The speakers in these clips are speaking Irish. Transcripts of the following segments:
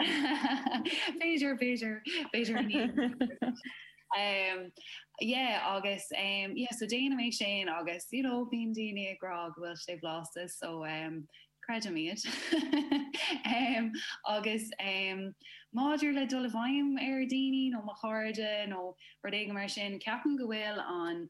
B'fhéidir, b'fhéidir, b'fhéidir níl. Yeah agus umm yeah so déanaim é sin agus you know bíonn daoine ag rá go bhfuil sé blasta so umm creidim iad. Umm agus umm maidir le dul i bhfeidhm ar dhaoine nó mo chairde nó rud éigin mar sin ceapaim go bhfuil an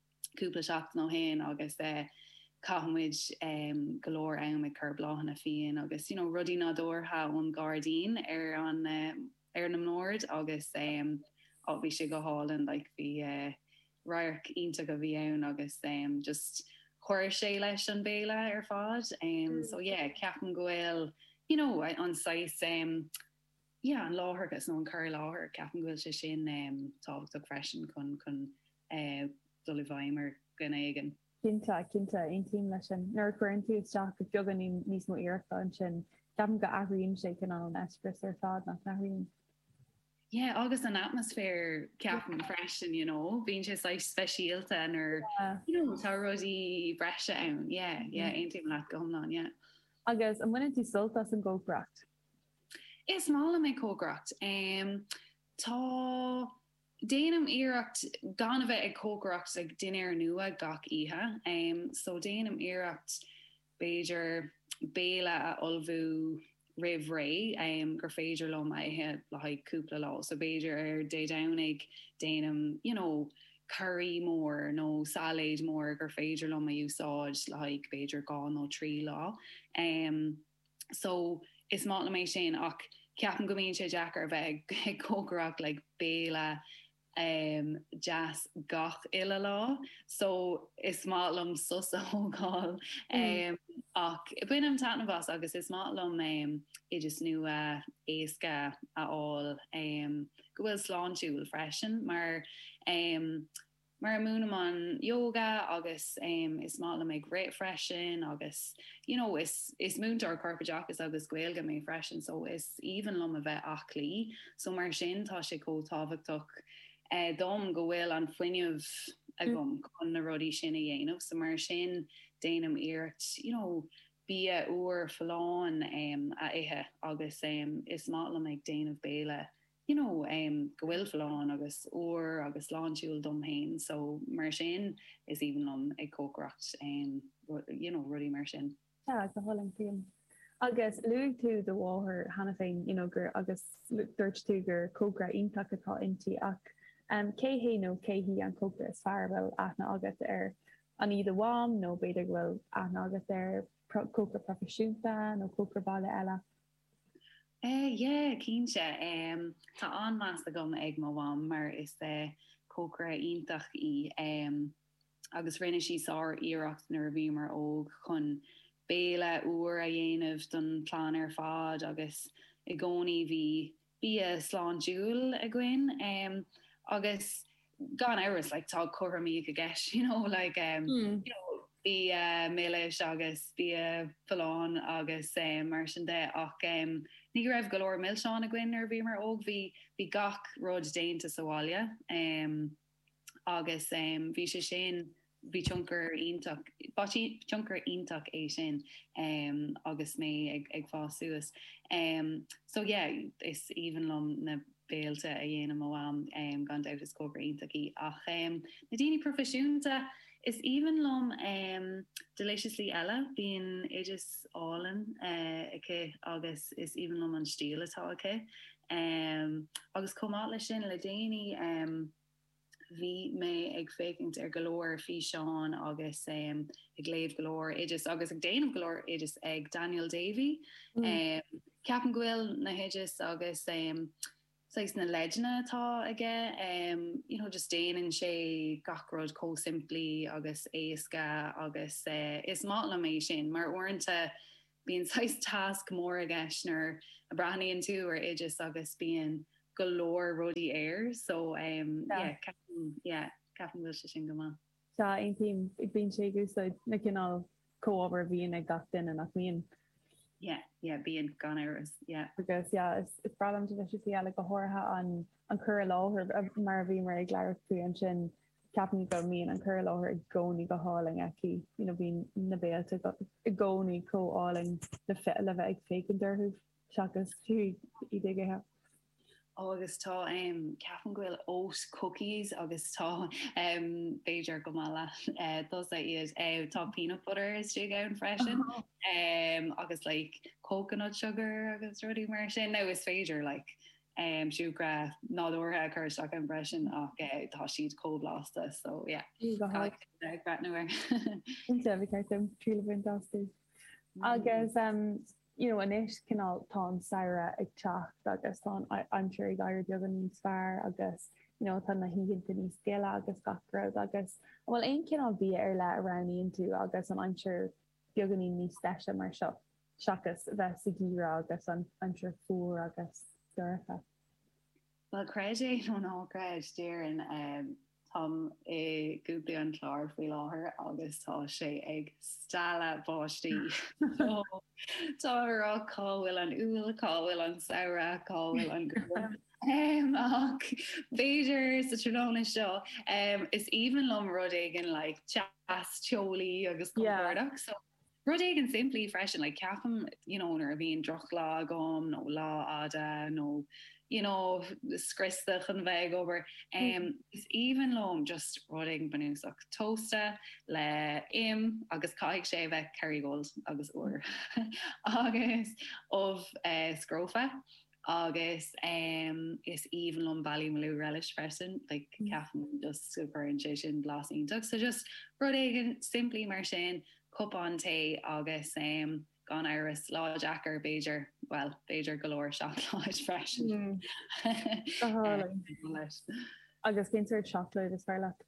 cúpla seachtain ó shin agus chaith muid go leor am ag cur bláthanna fiáine agus you know rudaí nádúrtha ón gairdín ar an ar na mbord agus oh bhí sé go hálainn like bhí radharc iontach a bhí ann agus just chuir sé leis an béile ar fad. So yeah ceapaim go bhfuil you know an saghas yeah an láithreachas nó an cur i láthair, ceapaim go bhfuil sé sin tábhachtach freisin chun chun dul i bhfeidhm ar dhuine éigin. Cinnte, cinnte, aontaím leis sin. Nuair a chuireann tú isteach beagáinín níos mó iarrachta ansin, ceapaim go athraíonn sé cineál an eispéireas ar fad, nach n-athraíonn? Yeah, agus an atmaisféar ceapaim freisin, you know, bíonn sé saghas speisialta nuair you know tá rudaí breise ann, yeah, yeah, aontaím leat go hiomlán, yeah. Agus an mbaineann tú sult as an gcócaireacht? Is maith liom ag cócaireacht. Déanaim iarracht gan a bheith ag cócaireacht like dinnéar nua gach oíche. So déanaim iarracht b'fhéidir béile a ullmhú roimh ré gur féidir liom a ithe le haghaidh cúpla lá. So b'fhéidir ar Dé Domhnaigh déanaim you know curry mór nó sailéad mór gur féidir liom a úsáid le haghaidh b'fhéidir dhá nó trí lá. so is maith liom é sin ach ceapaim go mbíonn sé deacair a bheith ag cócaireacht like béile ehm deas gach uile lá so is maith liom sos a thógáil ehm ach bainim taitneamh as agus is maith liom ehm oideas nua éasca a fháil ehm go bhfuil sláintiúil freisin mar ehm mar a múinim an yoga agus is maith liom ag rith freisin agus you know is is múinteoir corpoideachais agus Gaeilge mé freisin so is aoibhinn liom a bheith aclaí so mar sin tá sé chomh tábhachtach eh, dom go bhfuil an fuinneamh agam mm. chun na rudaí sin a dhéanamh so mar sin déanaim iarracht you know bia úr folláin um, a ithe agus um, is maith liom ag déanamh béile you know em go bhfuil folláin agus úr agus sláintiúil dom féin so mar sin is aoibhinn liom ag cócaireacht em you know rudaí mar sin. Sea, go hálainn, cinnte. Agus luaigh tú do mháthair cheana féin you know gur agus dúirt tú gur cócaire iontach atá inti ach em cé hé nó cé hí an cócaire is fearr a bhfuil aithne agat air? An í do mham nó b'fhéidir go bhfuil aithne agat ar cócaire proifisiúnta nó cócaire baile eile? Eh yeah cinnte em tá an-meas agam ar mo mham mar is eh cócaire iontach í em agus rinne sí sár-iarracht nuair a bhíomar óg chun béilí úra a dhéanamh don chlann ar fad agus i gcónaí bhí bia sláintiúil againn agus gan amhras like tá cothromaíocht i gceist you know like um you know bia milis agus bia folláin agus um mar sin de ach um ní go raibh go leor milseán againn nuair a bhíomar óg bhí bhí gach rud déanta sa bhaile um agus bhí sé sin, bhí tionchar iontach, ba thionchar iontach é sin agus mé ag fás suas. So yeah, is aoibhinn liom na béilí a dhéanann mo Mham, gan dabht is cócaire iontach í. Ach na daoine proifisiúnta, is aoibhinn liom Deliciously Ella, bíonn oidis álainn aici agus is aoibhinn liom an stíl atá aici. Agus chomh maith leis sin, le déanaí bhí mé ag féachaint ar go leor físeán agus ag léamh go leor oideas agus ag déanamh go leor oideas ag Daniel Davey. Ceapaim go bhfuil na hoidis agus saghas na leideanna atá aige, you know, just déanann sé gach rud chomh simplí agus éasca agus is maith liom é sin mar uaireanta Bíonn saghas tasc mór i gceist nuair a breathnaíonn tú ar oideas agus bíonn go leor rudaí air so yeah ceapaim yeah ceapaim go bhfuil sé sin go maith. Sea, aontaím. Bíonn sé ag úsáid na cineál comhábhair a bhíonn ag gach duine, nach mbíonn? Yeah, yeah bíonn, gan amhras, yeah. Agus yeah is breá liom Deliciously Ella go háirithe an an cur i láthair mar a bhíomar ag labhairt faoi ansin Ceapaim go mbíonn an cur i láthair i gcónaí go hálainn aici, you know bíonn na béilí i gcónaí chomh álainn le bheith ag féachaint orthu seachas iad a ithe. Ó agus tá, em, ceapaim go bhfuil oat cookies agus tá, em, b'fhéidir go mba mhaith leatsa iad, eh, tá peanut butter istigh ann freisin, em, agus like coconut sugar agus rudaí mar sin, nó is féidir like, siúcra nádúrtha a chur isteach ann freisin ach tá siad chomh blasta so yeah go háirithe le breathnú ar Cinnte ba cheart dom triail a bhaint astu. Agus you know anois cineál tá an samhradh ag teacht agus tá an aimsir ag éirí beagán níos fearr agus you know tá na hoícheanta níos gile agus gach rud agus an bhfuil aon cineál bia ar leith a roghnaíonn tú agus an aimsir beagáinín níos deise mar seo seachas bheith sa gheimhreadh agus an aimsir fuar agus dorcha. Bhuel, creid é nó ná creid, déarfainn, táim i gContae an Chláir faoi láthair agus tá sé ag stealladh báistí. Táim ag rá cá bhfuil an Iúil, cá bhfuil an Samhradh, cá bhfuil an ghrian. Ach b'fhéidir sa tráthnóna seo, is aoibhinn liom rud éigin like deas, teolaí agus compordach. So rud éigin simplí freisin, like ceapaim you know nuair a bhíonn droch-lá agam nó lá fhada nó you know scriosta chun bheith ag obair, is aoibhinn liom just rud éigin bunúsach, tósta le im agus caithfidh sé a bheith Kerrygold agus úr agus ubh scrofa. Agus is aoibhinn liom Ballymaloe Relish freisin, like ceapaim just go gcuireann sé sin blas iontach. So just rud éigin simplí mar sin, cupán tae agus gan amhras lá deacair b'fhéidir, bhuel, b'fhéidir go leor seacláid freisin. Go hálainn. Agus cén tseacláid is fearr leat?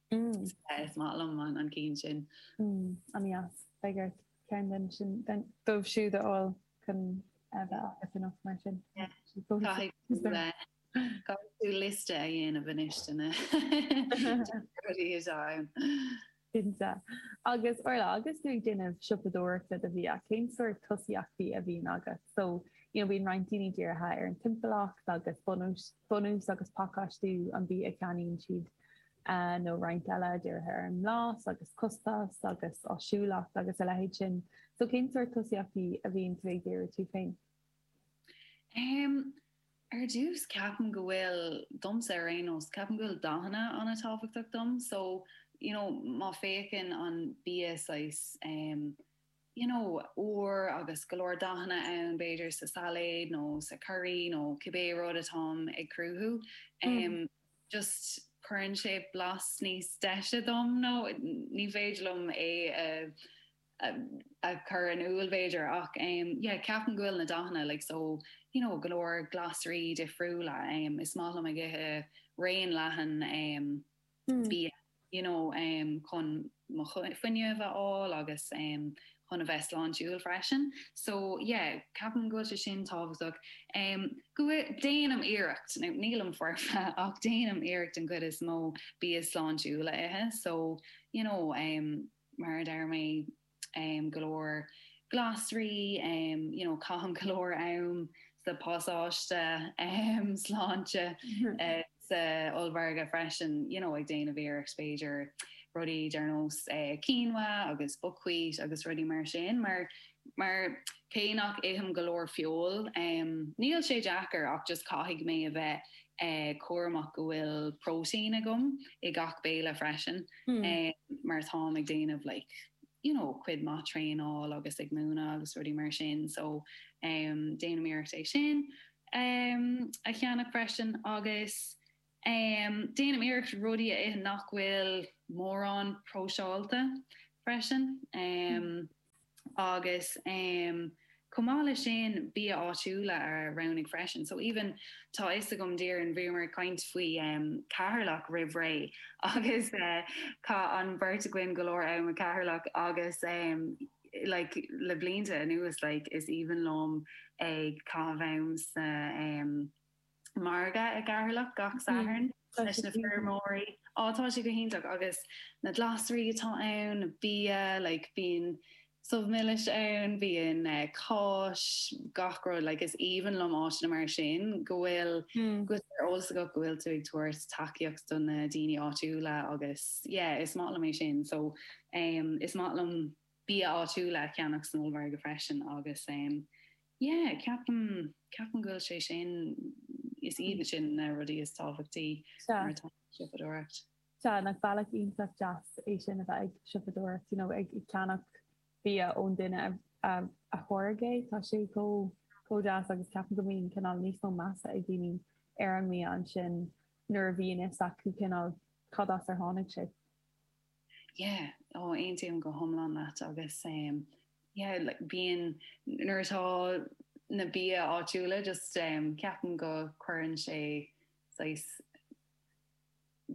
Sea, is maith liom an ceann sin. An ea? Beidh ort ceann díobh siúd a fháil chun bheith agat anocht mar sin. Caithfidh tú liosta a dhéanamh anois de na rudaí atá ann. Cinnte. Agus Orla, agus tú ag déanamh siopadóireachta do bhia, cén sórt tosaíochtaí a bhíonn agat? So, you know, bíonn roinnt daoine dírithe ar an timpeallacht agus bunús, bunús agus pacáistiú an bhia a cheannaíonn siad nó roinnt eile, dírithe ar an mblas agus costas agus áisiúlacht agus a leithéid sin. So cén sórt tosaíochtaí a bhíonn tú ag díriú air tú féin? Um, ar dtús ceapaim go bhfuil, domsa ar aon nós, ceapaim go bhfuil dathanna an-tábhachtach dom. So, you know, má féachann an bia saghas, um, you know, úr agus go leor dathanna ann b'fhéidir sa sailéad nó sa curry nó cibé rud atáim ag cruthú, just cuireann sé blas níos deise dom nó ní féidir liom é a chur in iúl b'fhéidir ach yeah ceapaim go bhfuil na dathanna like so you know go leor glasraí difriúla, is maith liom ag ithe raon leathan. bia you know chun mo fuinneamh a fháil agus chun a bheith sláintiúil freisin. So yeah, ceapaim go bhfuil sé sin tábhachtach. Go déanaim iarracht, nílim foirfe ach déanaim iarracht an chuid is mó bia sláintiúil a ithe so you know mar a deir mé, go leor glasraí, you know, caithim go leor am sa bpasáiste sláinte sa ollmhargadh freisin, you know, ag déanamh iarracht b'fhéidir rudaí ar nós quinoa agus buckwheat agus rudaí mar sin, mar cé nach ithim go leor feoil, níl sé deacair ach just caithfidh mé a bheith cúramach go bhfuil próitín agam i gach béile freisin. mar atáim ag déanamh like you know cuid maith traenáil agus ag múineadh agus rudaí mar sin so em déanaim iarracht é sin em a cheannach freisin agus em déanaim iarracht rudaí a ithe nach bhfuil mórán próiseálta freisin em agus chomh maith le sin bia áitiúla a roghnú freisin. So even tá fhios agam Doireann bhíomar ag caint faoi Ceatharlach roimh ré agus chaith an beirt againn go leor am i gCeatharlach agus like le blianta anuas like is aoibhinn liom ag caitheamh am sa margadh i gCeatharlach gach Satharn leis na feirmeoirí. Á, tá sé go hiontach agus na glasraí atá ann, na bia, like bíonn subh milis ann, bíonn cáis, gach rud, like is aoibhinn liom áiteanna mar sin go bhfuil, go bhfuil sé ar eolas agat go bhfuil tú ag tabhairt tacaíocht do na daoine áitiúla agus yeah, is maith liom é sin. So is maith liom bia áitiúla a cheannach san ollmhargadh freisin agus Yeah, ceapaim, ceapaim go bhfuil sé sin, is iad sin na rudaí is tábhachtaí nuair atá tú ag siopadóireacht. Sea, nach bealach iontach deas é sin a bheith ag siopadóireacht, you know, ag ceannach bia ón duine a tháirg é, tá sé chomh, chomh deas agus ceapaim go mbíonn cineál níos mó measa ag daoine ar an mbia ansin nuair a bhíonn fhios acu cineál cad as ar tháinig sé. Yeah ó aontaím go hiomlán leat agus em yeah like bíonn nuair atá na bia áitiúla just em ceapaim go cuireann sé saghas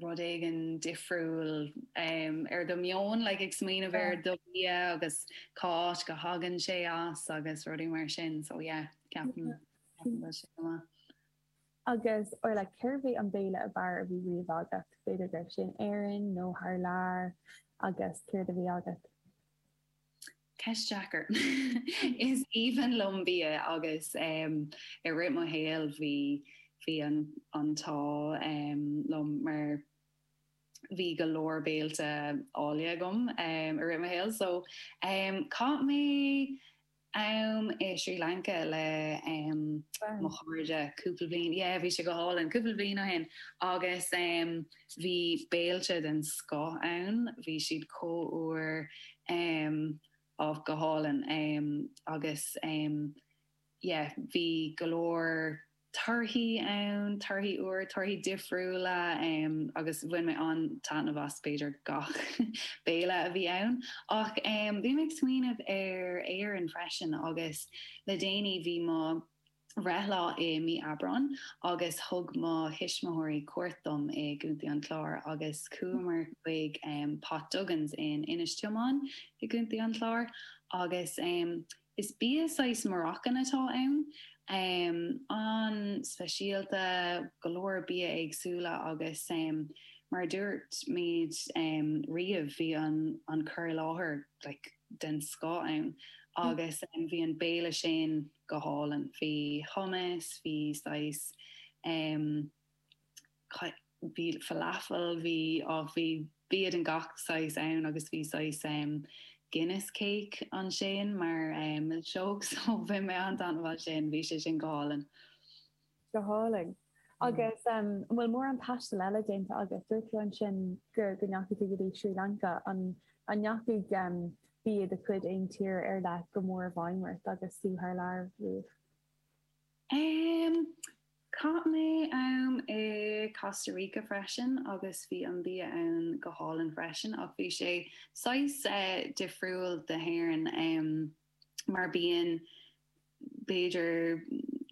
rud éigin difriúil em ar do mheon like ag smaoineamh ar do bhia agus cá áit go thagann sé as agus rudaí mar sin so yeah ceapaim go bhfuil sé go maith. Agus Orla cérbh é an béile ab fhearr a bhí riamh agat? B'fhéidir go raibh sin in Éirinn nó thar lear agus céard a bhí agat? Ceist deacair. Is aoibhinn liom bia agus em i rith mo shaoil bhí, bhí an, an t-ádh em liom mar bhí go leor béilte áille agam em i rith mo shaoil. So em chaith mé. am i Srí Lanca le mo chairde cúpla bliain, yeah, bhí sé go hálainn, cúpla bliain ó shin, agus bhí béilte den scoth ann, bhí siad chomh úr, oh, go hálainn, agus yeah, bhí go leor torthaí ann, torthaí úr, torthaí difriúla agus bhain mé an-taitneamh as b'fhéidir gach béile a bhí ann. Ach bhí mé ag smaoineamh ar Éirinn freisin agus le déanaí bhí mo bhreithlá i mí Aibreáin agus thug mo thuismitheoirí cuairt dom i gContae an Chláir agus chuamar chuig Pot Duggans in Inis Díomáin i gContae an Chláir agus Is bia saghas Moroccan atá ann. An-speisialta, go leor bia éagsúla agus mar a dúirt muid riamh bhí an cur i láthair like den scoth ann agus bhí an béile sin go hálainn. Bhí hummus, bhí saghas. bhí falafel, bhí, á bhí, bia de gach saghas ann agus bhí saghas em Guinness cake ansin mar eh milseog so bhain mé an-taitneamh as sin, bhí sé sin go hálainn. Go hálainn. Agus em an bhfuil mórán taistil eile déanta agat? Dúirt tú ansin gur go ndeachaigh tú go dtí Srí Lanca, an an ndeachaigh em bia de chuid aon tír ar leith go mór i bhfeidhm ort agus tú thar lear riamh? Em. Chaith mé am i Costa Rica freisin agus bhí an bia ann go hálainn freisin ach bhí sé saghas, eh, difriúil de Éirinn, em, mar bíonn, b'fhéidir,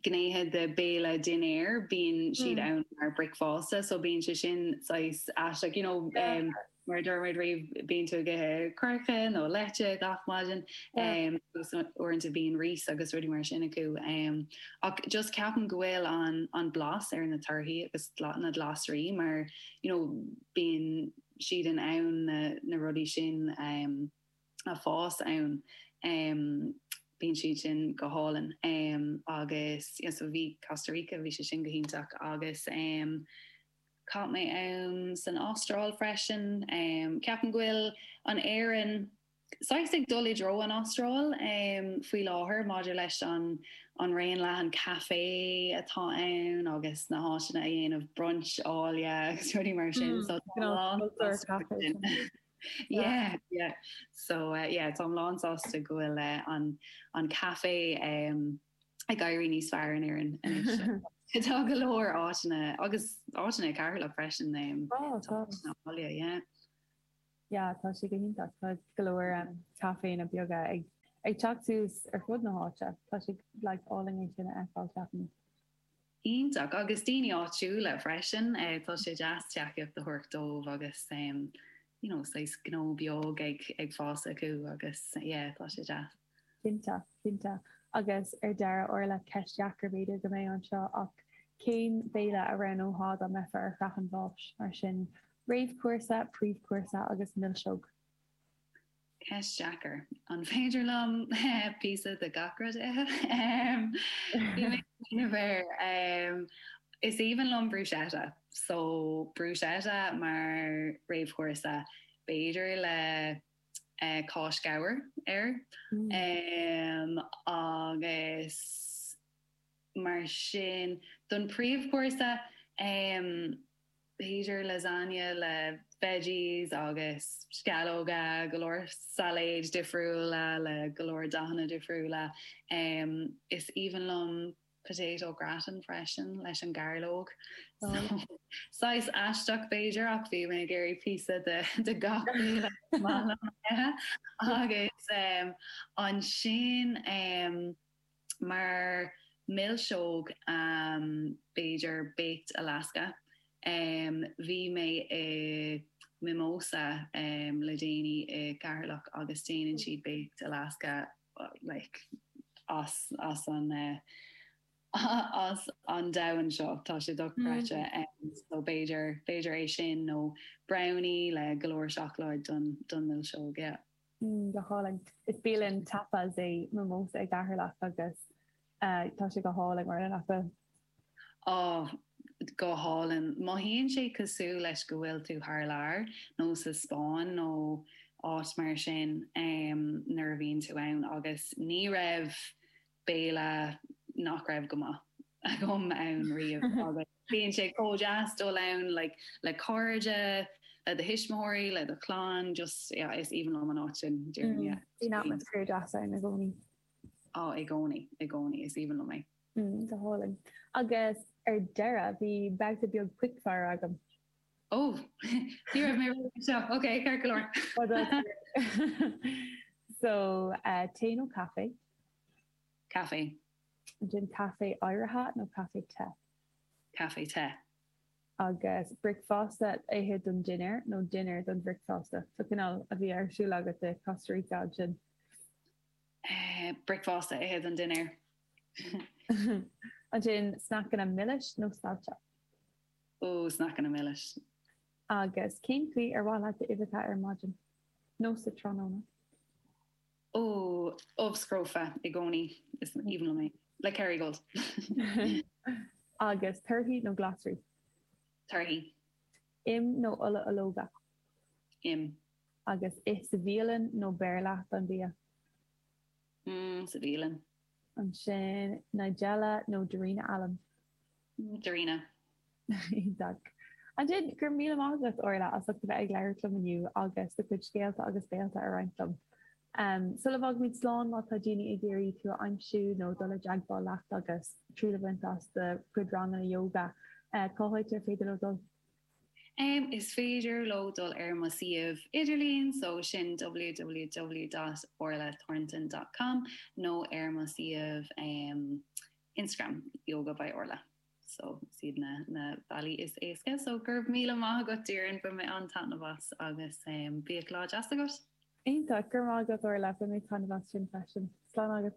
gnéithe de béile dinnéar, bíonn siad Mm. ann mar bricfeasta so bíonn sé sin saghas aisteach, you know, em, deacair. Mar a dúirt muid riamh, bíonn tú ag ithe coirce nó leite gach maidin agus uaireanta bíonn rís agus rudaí mar sin acu ach just ceapaim go bhfuil an an blas ar na torthaí agus na glasraí mar you know bíonn siad in ann na na rudaí sin a fhás ann bíonn siad sin go hálainn agus yes bhí Costa Rica bhí sé sin go hiontach agus um Chaith mé am san Astráil freisin. Ceapaim go bhfuil an Éirinn saghas ag dul i dtreo an Astráil faoi láthair maidir leis an raon leathan caife atá ann agus na háiteanna a dhéanamh brunch áille agus rudaí mar sin so tá mé lán sásta go bhfuil yeah yeah so yeah tá mé lán sásta go bhfuil an caife ag éirí níos fearr in Éirinn anois. Tá go leor áiteanna agus áiteanna i gCeatharlach freisin um Tá, tá. áiteanna, yeah. Yeah, tá sé go hiontach. Tá go leor um caiféanna beaga ag ag teacht suas ar fud na háite. Tá sé like álainn é sin a fheiceáil, ceapaim. Iontach. Agus daoine áitiúla freisin, tá sé deas tacaíocht a thabhairt dóibh agus you know saghas gnó beag ag fás acu agus yeah tá sé deas. Cinnte, cinnte. Agus ar deireadh, Orla, ceist dheacair b'fhéidir go mbeidh anseo ach cén béile a roghnófá dá mbeifeá ar shraith an bháis? Mar sin réamhchúrsa, príomhchúrsa agus milseog. Ceist dheacair. An féidir liom píosa de gach rud a ithe? Bhí mé ag smaoineamh air. Is aoibhinn liom bruschetta. So, bruschetta mar réamhchúrsa, b'fhéidir le cáis ghabhair air agus mar sin. Don príomhchúrsa, B'fhéidir lasagne le veggies agus sceallóga, go leor sailéid difriúla le go leor dathanna difriúla. Is aoibhinn liom potato gratin freisin leis an gairleog. Saghas aisteach b'fhéidir ach bheinn ag iarraidh píosa de gach rud is maith liom. Agus ansin, mar mhilseog b'fhéidir baked Alaska bhí mé i Mimosa le déanaí i gCeatharlach agus déanann siad baked Alaska like as as an as an domhan seo tá sé dochreidte so b'fhéidir b'fhéidir é sin nó brownie le go leor seacláid don don mhilseog yeah. go hálainn. Is bialann tapas é Mimosa i gCeatharlach agus tá sé go hálainn mar sin acu. Á, go hálainn. Mothaíonn sé cosúil leis go bhfuil tú thar lear, nó sa Spáinn nó áit mar sin, nuair a bhíonn tú ann. Agus ní raibh béile nach raibh go maith agam ann riamh agus Bíonn sé chomh deas dul ann like le cairde, le do thuismitheoirí, le do chlann, just yeah is aoibhinn liom an áit sin, deirim yeah. Bíonn atmaisféar deas ann i gcónaí. Á, i gcónaí, i gcónaí, is aoibhinn liom é. Mm, go hálainn. Agus ar deireadh, bhí babhta beag quickfire agam. Oh! Ní raibh mé ready anseo. Ok, ceart go leor. Fadó tabhair. So, tae nó caife? Caife. Ansin caife oighrithe nó caife te? Caife te. Agus bricfeasta a ithe don dinnéar nó dinnéar don bhricfeasta? So cineál a bhí ar siúl agat de Costa Rica ansin. Bricfeasta a ithe don dinnéar. Ansin sneaiceanna milis nó saillte? Ó, sneaiceanna milis. Agus cén chaoi ar mhaith leat d'uibheacha ar maidin nó sa tráthnóna? oh, ubh scrofa i gcónaí, is aoibhinn liom é. Le Kerrygold. Agus torthaí nó glasraí? Torthaí. Im nó ola ológa? Im. Agus ith sa bhialann nó beir leat an bia? Mm, sa bhialann. ansin, Nigella nó Darina Allen? Darina. Iontach. Ansin, go raibh míle maith agat, Orla, as ucht a bheith ag labhairt liom inniu agus do chuid scéalta agus béalta a roinnt liom. Um, sula bhfágaimid slán, má tá daoine ag iarraidh tú a aimsiú nó dul i dteagmháil leat agus triail a bhaint as do chuid ranganna yoga, eh, cá háit ar féidir leo dul? Is féidir leo dul ar mo suíomh idirlín so sin www.orlathornton.com nó ar mo suíomh Instagram Yoga by Orla so is iad na bealaí is éasca. So go raibh míle maith agat Doireann, bain mé an-taitneamh as agus bíodh lá deas agat! Iontach! Go raibh maith agat Orla, bain mé taitneamh as sin freisin. Slán agat!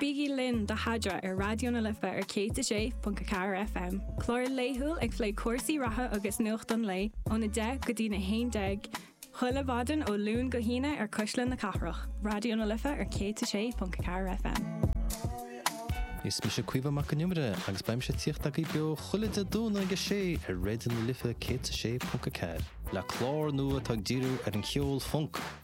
Bígí linn do Eadra ar Raidió na Life ar 106.4 FM. Clár laethúil ag plé cúrsaí reatha agus nuacht an lae ón 10 go dtí na 11 chuile mhaidin ó Luan go hAoine ar Cuisle na Cathrach, Raidió na Life ar 106.4 FM. Is mise Caoimhe Mac an Iomaire agus beidh mise tíocht agaibh beo chuile Dé Domhnaigh ag 6 ar Raidió na Life 106.4. Le clár nua atá ag díriú ar an cheol func,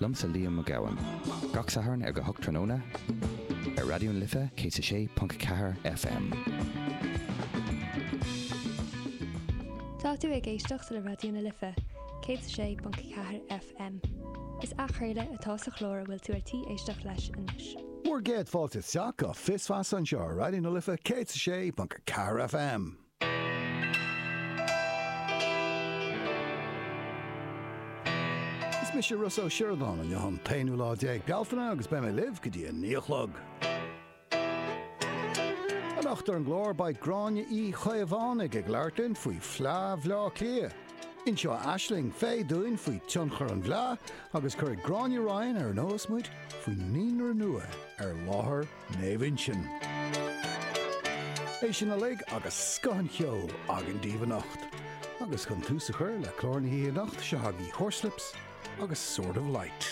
Liomsa Liam Mac Gabhann. Gach Satharn ar a hocht tráthnóna ar Raidió na Life 106.4 FM. Tá tú ag éisteacht le Raidió na Life 106.4 FM. Is athchraoladh atá sa chlár a bhfuil tú ar tí éisteacht leis anois. Bhur gcéad fáilte isteach go Fios Feasa anseo ar Raidió na Life 106.4 FM. Is mise Rossa Ó Sioradáin, inniu an t-aonú lá déag Bealtaine agus beidh mé libh go dtí a naoi a chlog. Anocht ar an gclár beidh Gráinne Uí Chaomhánaigh ag labhairt linn faoi Fleá Bhleá Cliath. Inseoidh Aisling Fay dúinn faoi tionchar an bhfleá agus cuirfidh Gráinne Ryan ar an eolas muid faoi naíonra nua ar láthair Naomh Uinseann. É sin uilig agus scoth an cheoil againn daoibh anocht. Agus chun tús a chur le clár na hoíche anocht, seo agaibh Horslips agus Sword of Light.